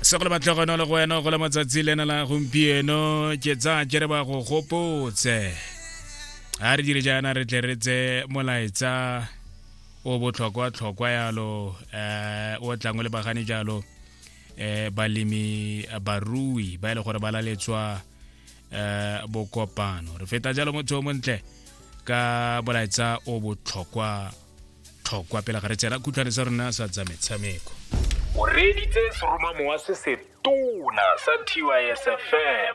se go le matlhogono le go wena go le matsatsi lena la gompieno ke tsa ke re ba go gopotse ga re dire jaana re tle re tse molaetsa o botlhokwa-tlhokwa yalo um o tlang o lebagane jalo um balemi barui ba e le gore ba laletswa um bokopano re feta jalo motho o montle ka molaetsa o botlhokwa tlhokwa pele ga re tsena kutlwane sa rona sa tsa metshameko o reeditse seromamowa se se tona sa tysfm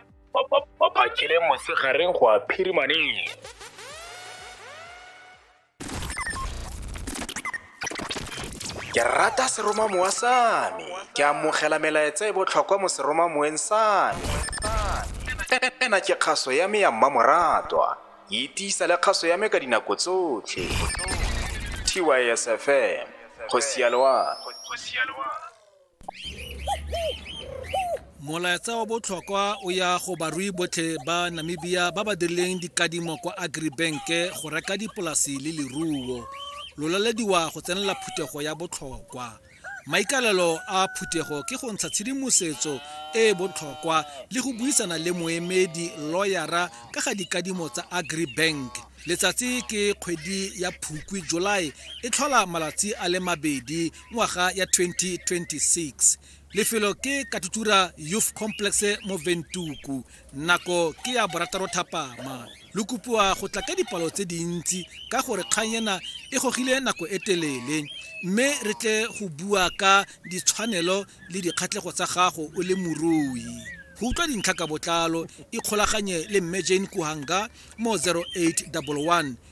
ba phakile mosegareng go a phirimaneng ke rata seromamowa sa me ke amogela melaetsa e botlhokwa mo seromamoweng sa me ena ke kgaso ya me ya mmamoratwa Itiisa le kgaso ya me ka dinako tsotlhe. TYSFM, go sialwa. Molaetsa wa botlhokwa o ya go barui botlhe ba Namibia ba ba dirileng dikadimo kwa Agribank go reka dipolasi le leruo. Lolalediwa go tsenela phuthego ya botlhokwa. maikalelo a phuthego ke go ntsha tshedimosetso e e botlhokwa le go buisana le moemedi loyara ka ga dikadimo tsa agribank letsatsi ke kgwedi ya phukwi july e tlhola malatsi a le mabedi ngwaga ya 2026 lefelo ke katutura youth complex mo ventuku nako ke ya borataro thapama lo kopiwa go tla ka dipalo tse dintsi ka gore kgang ena e gogile nako e telele mme re tle go bua ka ditshwanelo le dikgatlhego tsa gago o le morui go utlwa dintlha ka botlalo ikgolaganye le mme jane kuhanga mo 0811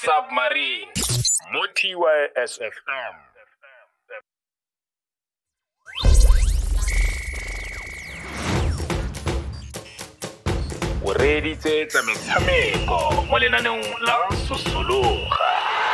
submarine mo TYSFM. o reeditse tsa metshameko mo lenaneong la sosologa